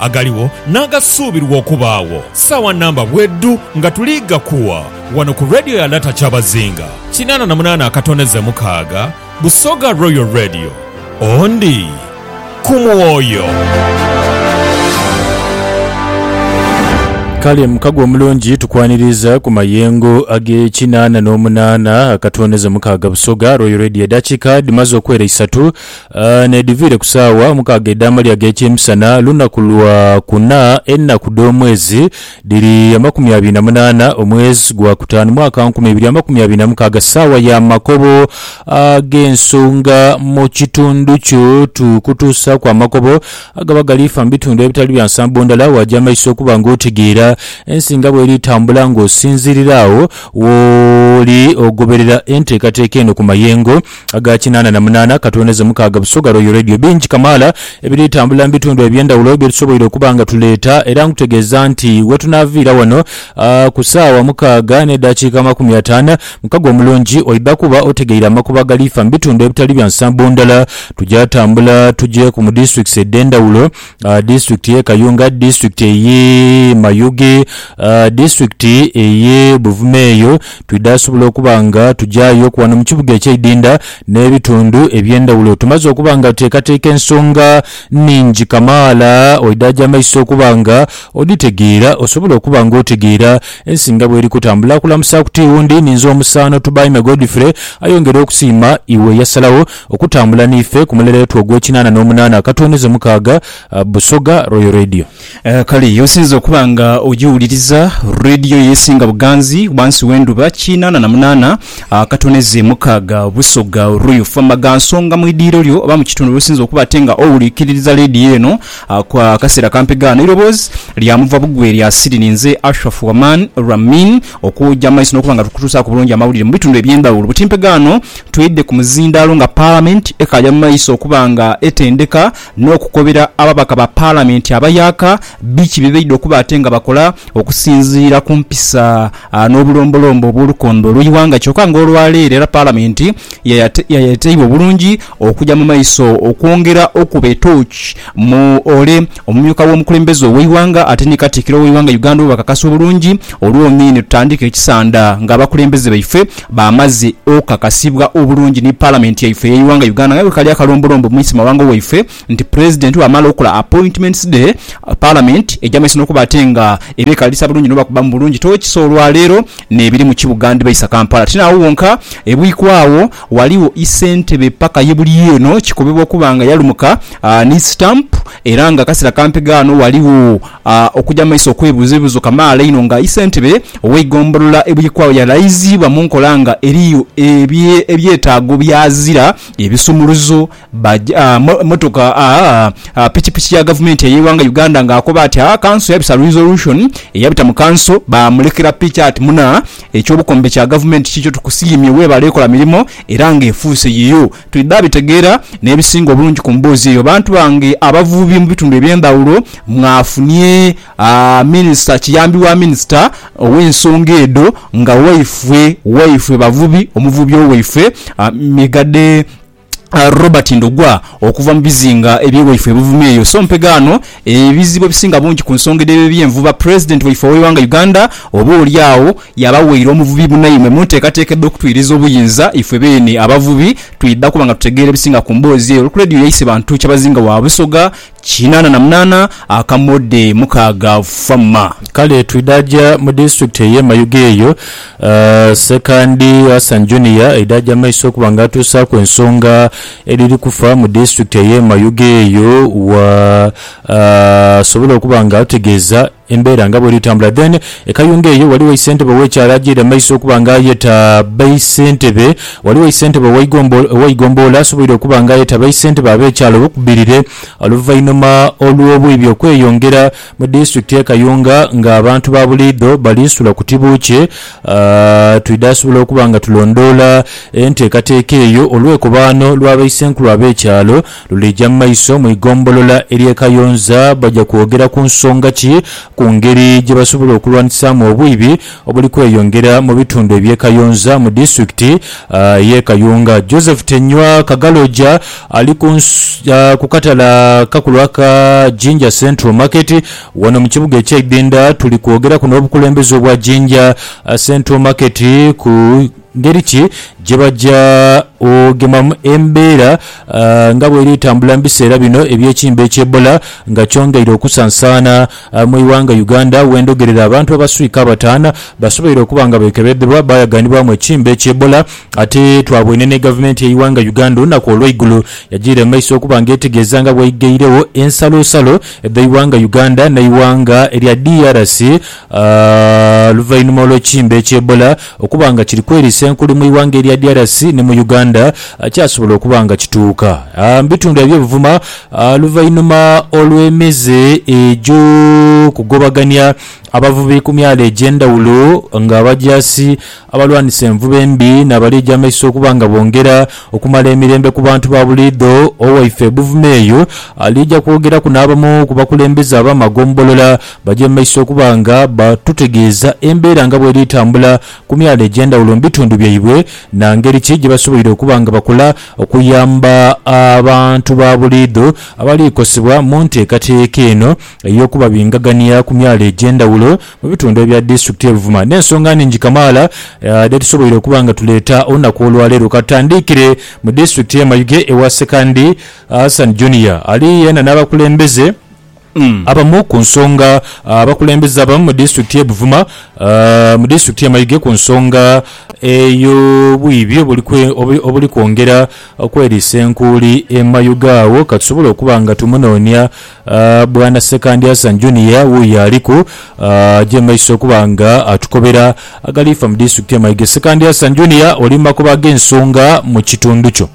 agaligho n'agasuubirwa okubaagho saawa namba bwedhu nga tuli ghakuwa ghano ku Radio ya Lata Kyabazinga kinaana na munaana akatoneze mukaaga, Busoga Royal Radio, Ondi ku mwoyo. Kale mukago omulungi tukwaniriza ku mayengo ag'ekinaana n'omunaana akatoneze mukaaga Busoga Royal Radio. Edakika dhimaze okwera isatu N'edhiviire ku saawa mukaaga edh'amalya ag'ekyemisana, lunaku lwa kuna, enaku dh'omwezi dhiri amakumi abiri na munaana, omwezi gwa kutaanu, mwaka nkumi ibiri amakumi abiri na mukaaga, saawa ya makobo ag'ensonga mu kitundu kyo. Tukutuusaaku amakobo agaba galiifa mu bitundu ebitali bya nsambo ndala, waaja amaiso okuba ng'otegeera ensi nga bw'eri tambula ng'osinziirira agho wooli ogoberera enteekateeka eno ku mayengo aga kinaana na munaana katwoneze mukaaga Busoga Royal Radio. Bingi kamaala ebiri tambula mu bitundu eby'endhawulo bye tusoboire okuba nga tuleeta era nkutegeeza nti we tunaaviira wano ku saawa mukaaga n'edaakiika amakumi ataano mukaga omulungi oidha kuba otegeire amakubo agaliifa mu bitundu ebitali bya nsambo ndala. Tugya tambula tugye ku mu districts edh'endhawulo. Disitulikiti y'e Kayunga, disitulikiti ey'e Mayuge, disitulikiti ey'e Buvuma eyo twidhaasobola okuba nga tugyayoku wano mu kibuga eky'eidhindha n'ebitundhu eby'endhawulo. Tumaze okuba nga tuteekateeka ensonga nnhingi kamaala oidhaaja amaiso okuba nga odhitegeera osobole okuba nga otegeera ensi nga bw'eri kutambula. Kulamusaaku ti wundi ninze omusaano Tubaime Godfrey ayongera okusiima iwe eyasalagho Okutambula n'ife ku mulere wetu ogw'ekinaana n'omunaana, ka tuweneeze mukaaga. Busoga, Royal Radio. Kale y'osinze okuba nga ogiwuliriza, Radio y'esinga buganzi ghansi w'endhuba, kinaana na munaana, ka tuweneeze mukaaga. Busoga, Royal. Fama gha nsonga mu idiiro lyo oba mu kitundu w'osinze okuba ate nga owulikiririza Radio eno akaseera kampi ghaano. Eiroboozi lya muva bugwe lya siri ni nze Ashraf Waman Ramin, okwoja amaiso n'okuba nga tukutuusaaku bulungi amawulire mu bitundu eby'endhawulo. Butimpe ghaano Twidhe ku muzindaalo nga Palamenti ekaja mu maiso okuba nga etendeka n'okukobera ababaka ba Palamenti abayaaka biki bye baidha okuba ate nga bakola okusinziira ku mpisa n'obulombolombo obw'olukondo olw'eighanga kyoka nga olwaleero era Palamenti yayeteibwa obulungi okuja mu maiso okwongera okukuba etooki Mu ole, omumyuka w'omukulembeze ow'eighanga ate ni Katikkiro w'eighanga Uganda bwebakakasa obulungi olwomi nitutandika ekisanda nga abakulembeze baife bamaze okukakasibwa obulungi ni Palamenti yaife ey'eighanga Uganda nga bwekali akalombolombo mu Issemawanga waife nti Pulezidenti bwamala okola appointments dhe Palamenti eja maiso nokuba ate nga eba ekalisa bulungi nobakubamu bulungi tooki so olwaleero nebiri mu kibuga ndibaisa Kampala tinaawo wonka ebwikwaawo Ghaligho isentebe paka ye buli eno kikobebwa okuba nga yalumuka ni stamp era nga akasera kampi ghano ghaligho okuja mumaiso okwebuza ebibuzo kamaala einho nga isentebe oweigombolola ebuyikwagho yalaiziibwa munkola nga eriyo ebyetaago byazira ebisumuluzo Baja motoka a pikipiki ya gavumenti eyeighanga Uganda nga akoba ati a kanso yabisa resolution eyabita mu kanso bamulekera piki ati muna ekyobukombe kya gavumenti kikyo tukusiimye webale kola mirimo era nga efuuse yiyo twidha bitegeera nebisinga obulungi ku mboozi eyo bantu bange abavubi mu bitundu ebyendhawulo mwafunye a minisita kiyambi wa minisita owensonga edho nga waifwe waifwe bavubi omuvubi owaifwe a Migadde Robert Ndugwa okuva mu bizinga ebye waife e Buvuma eyo. So mpega ano ebizibu ebisinga bungi ku nsonga edh'ebyo ebyenvuba President waife ow'eighanga Uganda oba oli agho yaba waire omuvubi munaimwe mu nteekateeka edh'okutwiriza obuyinza ifwe beene abavubi twidha kuba nga tutegeera ebisinga ku mboozi eyo. Olku Radio yaise bantu Kyabazinga wa Busoga, Kinaana na munaana akamode mukaaga Fama. Kale twidhaja mu disitulikiti eye Mayuge eyo Ssekandi Hassan Junior eidhaja amaiso okuba nga atuusaaku ensonga edhiri kufa mu disitulikiti eye Mayuge eyo wa sobole okuba nga atutegeeza Embeera nga bweri tambula then ekayunga eyo waliwo eisentebe owekyalo ajeire mumaiso okuba nga ayeta baisentebe waliwo eisentebe oweigomboola asoboire okuba nga ayeta baisentebe abekyalo obukubirire oluvainhuma olwobwibi okweyongera mu disitulikiti ye kayunga nga abantu babuliidho bali sula ku tibuukye twidha sobola okuba nga tulondoola enteekateeka eyo olwekobaano lwa baisenkulu abekyalo Luliija mu maiso mu igombolola ery'e Kayonza baja kwogera ku nsonga ki ku ngeri gye basobola okulwanisaamu obwibi obuli kweyongera mu bitundu eby'e Kayonza mu disitulikiti y'e Kayunga. Joseph Tenywa Kagaloja ali ku ku katale akakulu aka Jinja Central Market wano mu kibuga ekye Ibinda. Tuli kwogeraku n'obukulembeze obwa Jinja Central Market ku Ngeri ki gye baja okugemamu embeera nga bw'eri etambula mu biseera bino eby'ekimbe ekya Ebola nga kyongeire okusansaana mu ighanga Uganda wendhogerera abantu abaswika abataana basoboire okuba nga bekebedhebwa bayaganibwamu ekimbe ekya Ebola ate twabwene ni gavumenti yeighanga Uganda olunaku olweigulo yajiire mu maiso okuba nga etegeeza nga bweigheiregho ensalosalo dheighanga Uganda neighanga erya DRC A Oluvainhuma olw'ekimbe ekya Ebola okuba nga kiri kweriisa enkuli mu ighanga erya DRC ni mu Uganda, a kyasobola okuba nga kituuka a mu bitundhu ebye buvuma a luvainhuma olw'emize egyo kugobagania abavubi ku myalo egy'endhawulo nga abajaasi Abalwanisa envuba embi n'abali egy'amaiso okuba nga bongera okumala emirembe ku bantu ba buliidho, Owaife Buvuma eyo aliija kwogeraku n'abamu ku bakulembeze ab'amagombolola baje mu maiso okuba nga batutegeeza embeera nga bw'eri etambula ku myalo egy'endhawulo mu bitundu byaibwe na ngeri ki gye basoboire okuba nga bakola okuyamba abantu ba buliidho abali kosebwa mu nteekateeka eno ey'okubabingagania ku myalo egy'endhawulo mu bitundu ebya disitulikiti ye Buvuma n'ensonga nhingi kamaala dhetusoboire okuba nga tuleeta olunaku olwaleero. Katutandiikire mu disitulikiti ye Mayuge ewa Sekandi Hassan Junior ali yena n'abakulembeze abamu ku nsonga abakulembeze abamu mu disitulikiti ye Buvuma mu disitulikiti ye Mayuge ku nsonga ey'obwibi obuli kwongera okweriisa enkuuli e Mayuge agho katusobole okuba nga tumunoonia Bwana Ssekandi Hassan Junior wuuyo aliku je maiso okuba nga atukobera agalifa mu disitulikiti ye Mayiga. Ssekandi Hassan Junior oli mu makubo ag'ensonga mu kitundu kyo.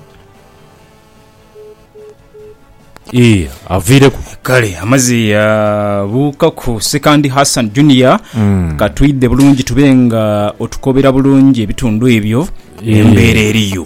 Ii, Aviireku. Kale amaze yabuukaku Ssekandi Hassan Junior, ka twidhe bulungi tube nga otukobera bulungi ebitundu ebyo embeera eriyo.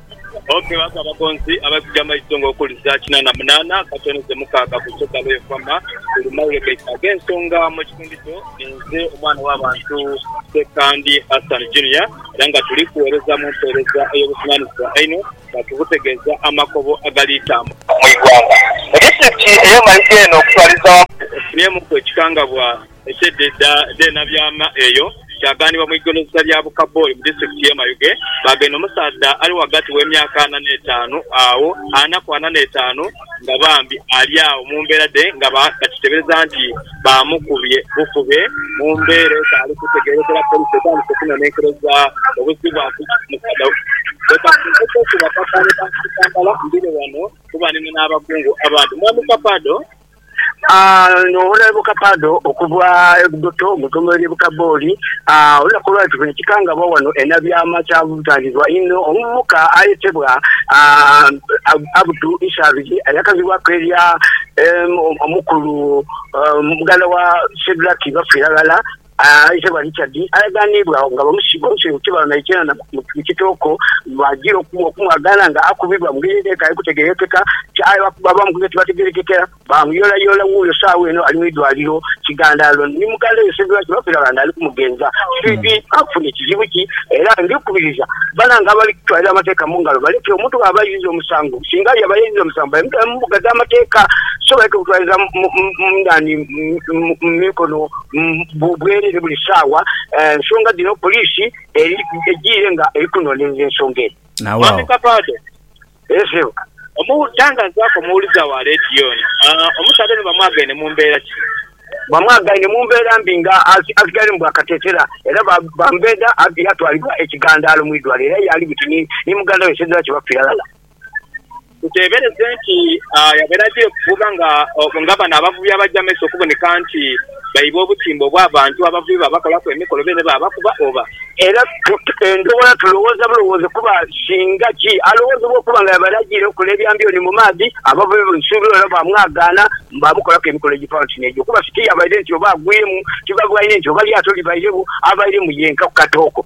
Ookebaaku abagonzi abaikuja amaiso ng'okuli saa kina na munaana akatonezo mukaaga ku Soda Royal Farmer buli mailo gaitu ag'ensonga mu kitundu kyo. Ninze omwana w'abantu Ssekandi Hassan Junior era nga tuli kugheereza mu mpeereza ey'obuvunanizibwa einho nga tubutegeeza amakobo agali tambu. Mu igwanga, mu disiturikiti ey'e Mayuge eno okutwaliza wamu. Efunyemuuku ekikangabwa Eky'edha edha dh'enabyaama eyo, kyagaanibwa mu igolosa lya Bukaboi mu disiturikiti y'e Mayuge, baagenda omusaadha ali ghagati w'emyaka ana n'etaanu agho ana ku ana n'etaanu nga bambi ali agho mu mbeera dhe nga bakiteebereza nti baamukubye bukube. Mu mbeera etaali kutegeerekera, poliisi etandise okunonenkereza obuzibwaku omusaadha we. Leka nkuteeku bakakaane ba Kampala mbire ghano kuba nina n'abakungu abandi. Mwami Kapaado. N'owola ebuka Pardo okuva e Budoto mu itongo ly'e Bukabooli, olunaku olwa leero nikikangabwa wano e Nabyama kyabutangibwa inho omuvubuka ayetebwa Abdu Ishabiri ayakazibwaku erya Omukulu, muganda wa Shedrack Bafiiraghala Aitebwa Richard ayagaaniibwagho nga bamusiiba omusenho ku kibalo naikendha mu kitooko bwajira okumwagaana nga akubibwa mu ngeri edhetaagha kutegerekeka aye bakuba bamukubira tibategerekeka baamuyolayoola wuuyo saagha eno ali mu idwaliro kigandaalo ni muganda we Ssebyo Lwaki Lwafera Lwanda ali kumugenza fibi afunye kizibu ki era ndikubiriza banange abali kutwalira amateeka mu ngalo baleke omuntu bwaba ayiziza omusango singa yaba yeyiziza omusango bamutwale mu mbuga dh'amateeka so baleke kutwaliza mu mu mu nani mu mikono bwerere buli saawa nsonga dhino poliisi ejiire nga eri kunonerera ensonga eno. Mwami Kapaado, Eeh sebo. Omutangazaku omuwuliza wa leediyo ono, omusaadha ono bamwagaine mu mbeera ki? Bamwagaine mu mbeera mbi nga asigaire mu bwakatetera era bamubedha yatwalibwa e Kigandaalo mu idwaliro era y'ali buti ni muganda we Sedraki bafiire ghalala. Tuteebereze nti yabeera gye kuvuba nga bano abavubi abaja amaiso okuboneka nti baiba obutimba obw'abantu abavubi baabakolaku emikolo beene baabakuba oba. Era endhowola tulowooza bulowooze kuba singa ki alowoozebwa okuba nga yabeera ajiire kukola ebya mbyoni mu maadhi, abavubi bamusuubira era baamwagaana baamukolaku emikolo egifaanana oti n'egyo kuba sitiyabaire nti oba agwiremu, tibabaine nti oba lyato libaire wo, abairemu yenka ku katooko.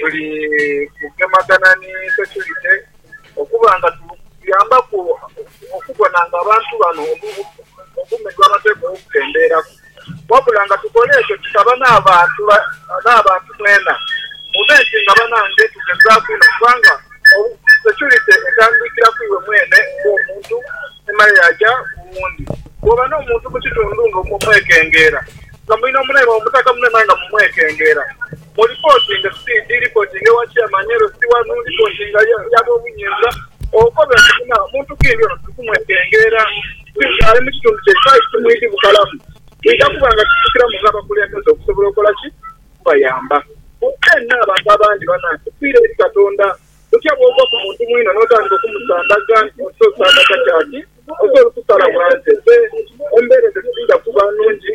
Tuli kugemagana ni securite okuba nga tubuyambaku okubona nga abantu bano obulumi bwabateekwa okukendeeraku. Wabula nga tukola ekyo tusaba n'abantu mwena mube nti nga banange tugezaaku inho kubanga securite etandikira ku iwe mwene ng'omuntu emale yaaja ku wundi. Bwooba n'omuntu mu kitundu nga mwekengeera, nga mulina omunaimwe mumutaka munho naye nga mumwekengeera. O reportinga si ndi reportinga ewa chairman elo si wanu reportinga ya bobuyinza okobe nti muna muntu kindi ono tuli kumwekengeera singa ali mukitundu kye kyaisu timwidi bukalamu twidha kuba nga tufukilamu nga abakulembeze okusobola okola ki okubayamba bwena abantu abandi banange fiira eri katonda otya bwova ku muntu mwino notandika okumusandaga nti oti osandaga kyaki oti oli kusalamu anze fe embera ezo tidhidha kuba nungi.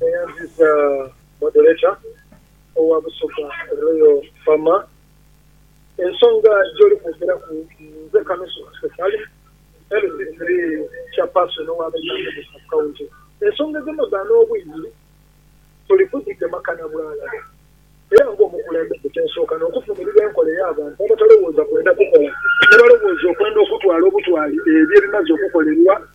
Neyanziza Moderator owa Busoga Royal Farmer. Ensonga gyoli kwogeraku nze Kanusu Kasita Salim, LC3 Chairperson owa Bairambugo Sub County. Ensonga edhino dha n'obwire tuli kudhigema kana bwalala era ng'omukulembeze kyensooka n'okuvumirira enkola ey'abantu abatalowooza kwenda kukola nebalowooza okwenda okutwala obutwali ebyo ebimaze okukolerwa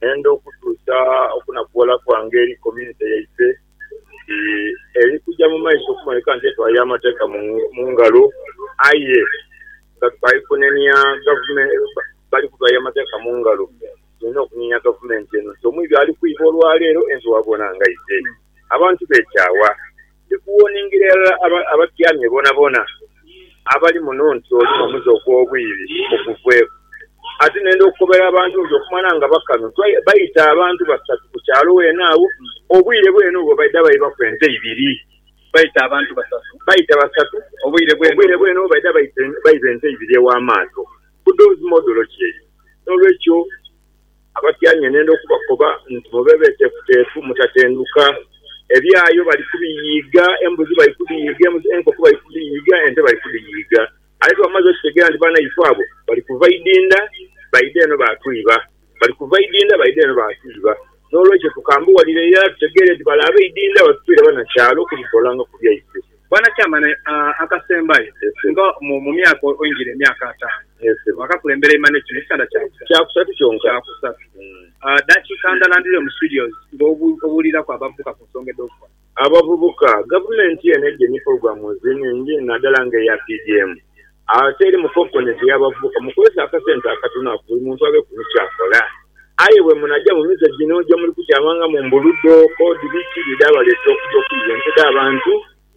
Nenda okutuusa okunakughola kwange eri community yaife nti eri kuja mu maiso okuboneka nti etwaire amateeka mu ngalo aye nga tukali kunenia gavumenti, bali kutwaire amateeka mu ngalo, tulina okunenia gavumenti eno nti omwibi ali kwiba olwaleero ensi bwabona nga aidhe. Abantu bekyaawa. Ndi kuwoningira irala abatyamye boonaboona abali muno nti oli n'omuze ogw'obwiire bukuveeku. Ate nenda okukobera abantu nti okumala nga bakano baita abantu basatu ku kyalo weena agho, obwiire bweene obwo baidha baibaku ente ibiri. Baita abantu basatu. Baita basatu. Obwiire bweene obwo baidha baiba ente ibiri ew'amaato. Budozi modolo ki eyo? N'olwekyo. Abatyaime nenda okubakoba nti, Mube beteefuteefu, mutatenduka. Ebyayo bali kubiyiiga, embuzi bali kudiyiiga, enkoko bali kudiyiiga, ente bali kudiyiiga. Aye tibamaze okitegeera nti baanaifo abo bali kuva idinda baidha eno baatwiba, bali kuva idinda baidha eno baatwiba. N'olwekyo tukambughalira irala tutegeere nti bale ab'eidinda batutwire banakyalo okudutoolangaku byaifo. Bwana Chairman, akasembayo nga mu myaka oingira emyaka ataanu wakakulembera Imani ekyo nekitanda kyakusatu kyonka dakiika ndala ndhire mu studios nga obuuliraku abavubuka ku nsonga edhokukola. Abavubuka, Gavumenti eno eidye ni pulogulamu nhingi nadala nga eya PDM Agho teri mukonkoni gye yaba avubuka mukozese akasente akatono ako buli muntu abeeku ni ky'akola. Aye bwe munaja mu mize gino gye muli kutyamanga mu mbuludo, kodi biki bye dhaabaleetera okuja okuyiya ente dh'abantu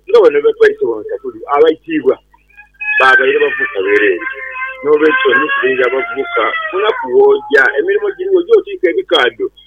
nga bano bye batwaise bonsa buli abaitiibwa baabaire bavubuka bereere? N'olwekyo, ni kubuulira abavubuka, Munaku w'oja, emirimo giriwo, oje otiike ebikaadho.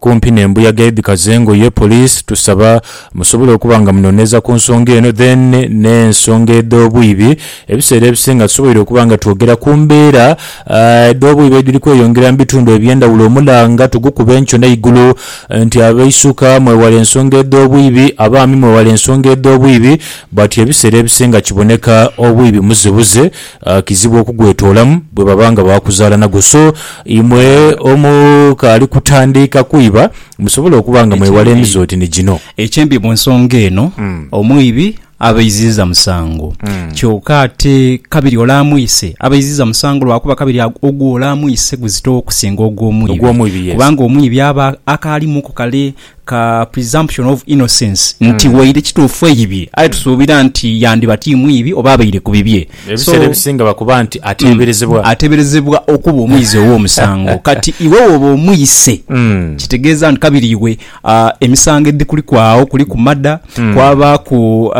kumpi nembuyaga edhikaza engoye police tusaba musobole okuba nga munoneza kunsonga eno then nensonga edhobwibi ebiseera ebisinga tusoboire okuba nga twogera kumbeera edhobwibi edhiri kweyongera mubitundu ebyendhawulo omulanga tugukuba enkyo neigulu nti abaisuka mwewale ensonga edhobwibi abaami mwewale ensonga edhobwibi bwati ebiseera ebisinga kiboneka obwibi muzibuzi Kizibu okugwetoolamu bwe baba nga baakuzaala nagwo. So, imwe omukaali kutandiika kwiba, musobola okuba nga mwewala Ekyembi, emize oti ni gino. ekyembi mu nsonga eno omwibi aba eiziiza musango. Kyoka ate kabiri ole amwise aba eiziiza musango lwakuba kabiri agu- ogwo ole amwise guzitowo okusinga ogw'omwibi. Ogw'omwibi, yes. Kubanga omwibi aba akaalimuku kale ka presumption of innocence nti waire kituufu eibye aye tusuubira nti yandiba ti mwibi oba abaire ku bibye. Ebiseera ebisinga bakuba nti ateeberezebwa. Ateeberezebwa okuba omwizi ow'omusango. Kati iwe wooba omwise kitegeeza nti kabiri iwe emisango edhikuliku agho kuliku mada, kwabaaku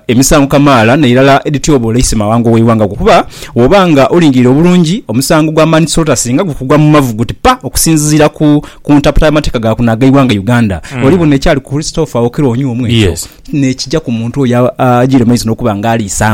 emisango kamaala n'eirala edhityoboola eisema awango w'eighanga ku kuba bw'oba nga olingirire obulungi omusango gwa manslaughter singa gukugwa mu mavu guti pa okusinziira ku ku ntaputa y'amateeka ga kuno ag'eighanga Uganda, mm. oli buno ekyali ku Christopher Okello Onyuomu ekyo yes. nekija ku muntu oyo agira maizi n'okuba nga aliisa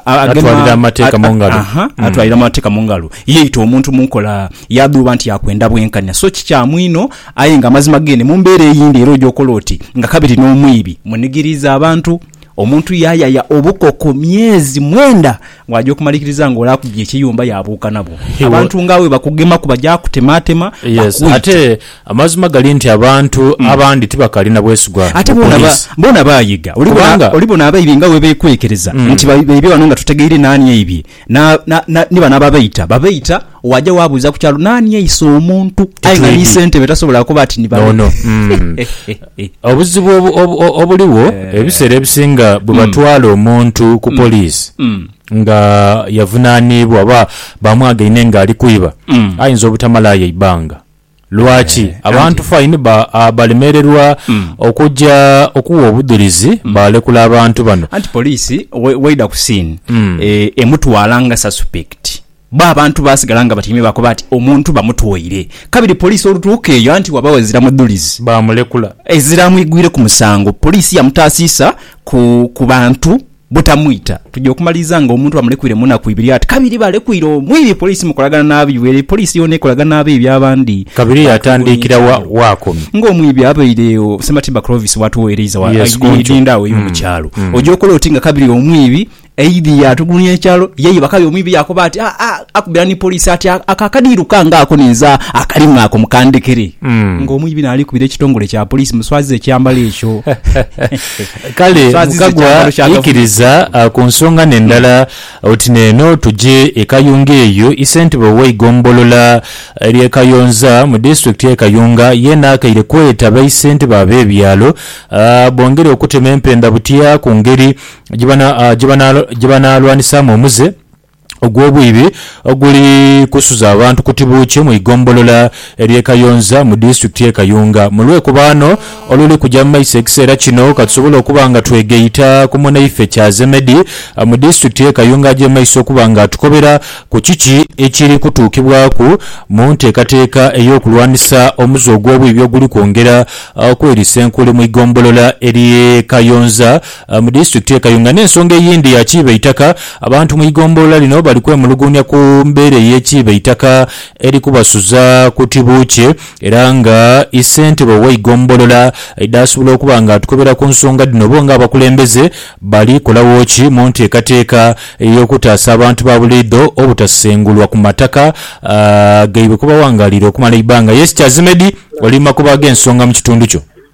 atwalira amateeka mu ngalo mm. atwalira amateeka mu ngalo yeita omuntu mu nkola yadhuuba nti yakwenda bwenkanya so kikyamu ino aye nga amazima gene mu mbeera eyindi era oja okola oti nga kabiri n'omwibi munigiriiza abantu omuntu yayaya obukoko myezi mwenda Bw'aja okumalikiriza ng'ole akubye ekiyumba yaabuuka nabwo. He wa- Abantu ng'abo bwe bakugemaku baja kutemaatema Yes, bakwite. ate amazima gali nti abantu abandi tibakali na bwesigwa Ate mu bona ba- poliisi. bona baayiga. Oli bona- Kubanga- oli bona abaibi nga bwe beekwekereza nti ba- baibye ghano nga tutegeire naani aibye. Na- na- na- ni bano ababaita, babaita. Waja wabuuza ku kyalo naani aise omuntu aye nga ni sente be tasobola kukoba ati ni bano. Nono mm. obuzibu obu, obu, obuliwo eh. ebiseera ebisinga bwe batwala mm. omuntu ku mm. poliisi mm. nga yavunaniibwa oba bamwagaine nga ali kwiba mm. ayinza obutamalayo eibanga Lwaki abantu faini balemererwa okuja okuwa obudhulizi balekula abantu bano? Anti poliisi waidha ku siini emutwala nga sasupekiti, bo abantu baasigala nga batyaime baakoba nti omuntu bamutwaire. Kabiri poliisi olutuuka eyo anti waba wazira mudhulizi. Baamulekula. Ezira amwigwireku musango, poliisi yamutaasiisa ku bantu. butamwita tuja okumaliriza nga omuntu bamulekwiire mu naku ibiri ati kabiri balekwire omwibi police mukolagana nabi were police yona ekolaga nabi ebi abandi Kabiri yatandikira wa wakomye. nga omwibi abaire o Sematimba Clovis watuwereiza wa Yes, kuncu. aidinda awo eyo mukyalo oja okola oti nga kabiri omwibi aidhi yatugulunya ekyalo yaiba kabiri omwibi yakoba ati "Ah, ah, akubira ni police ati "Ako- ako akadiiru kange ako ninze akalima ako mukandekere nga omwibi nalikubira ekitongole kya police muswaziza ekyambalo ekyo Kale Mukagwa aikiriza ku nsonga n'endala oti n'eno tuje e Kayunga eyo isentebe ow'eigombolola ly'e Kayonza mu disitulikiti y'e Kayunga yeena akaire kweta baisentebe ab'ebyalo bongere okutema empenda butya ku ngeri gye banaalwanisaamu omuze ogw'obwibi oguli kusuza abantu ku tibuukye mu igombolola ery'e Kayonza mu disitulikiti y'e Kayunga mu lwekubaano oluli kuja mu maiso ekiseera kino katusobole okuba nga twegaita ku munaife Kyazemedi mu disitulikiti y'e Kayunga aje mu maiso okuba nga atukobera ku kiki ekiri kutuukibwaku mu nteekateeka ey'okulwanisa omuze ogw'obwibi oguli kwongera okwerisa enkuli mu igombolola ery'e Kayonza Mu disitulikiti ye Kayunga n'ensonga eyindi ya kiiba eitaka, abantu mu igombolola lino bali kwemuluguunya ku mbeera ey'ekiiba eitaka eri kubasuza kuti buukye era nga ssentebe ow'eigombolola dhaasobola okuba nga atukebera ku nsonga dhino bo nga abakulembeze bali kolagho ki mu nteekateeka ey'okutaasa abantu ba buliidho obutasengulwa ku mataka gaibwe kwebawangalira okumala eibbanga. Yes Kyazimedi oli mu makubo ag'ensonga mu kitundu kyo.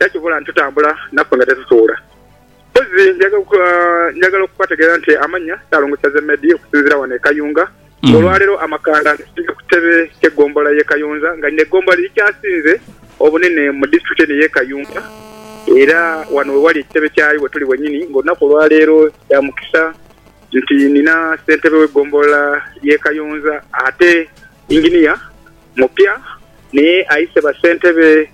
era kibula nitutambula naffe nga tetutuula. Mpozi njagala okubategeeza nti amannya Ssalongosa Zemedi okusinziira wano e Kayunga nga olwaleero amakanda ngasibye ku ttebe kye ggombolola y'e Kayonza nga lino eggombolola lye likyasinze obunene mu disitulikiti eno ey'e Kayunga era wano we wali ekitebe kyayo wetuli wenyini nga olunaku olwaleero kya mukisa nti nina ssentebe w'eggombolola y'e Kayonza ate Engineer mupya naye ayise bassentebe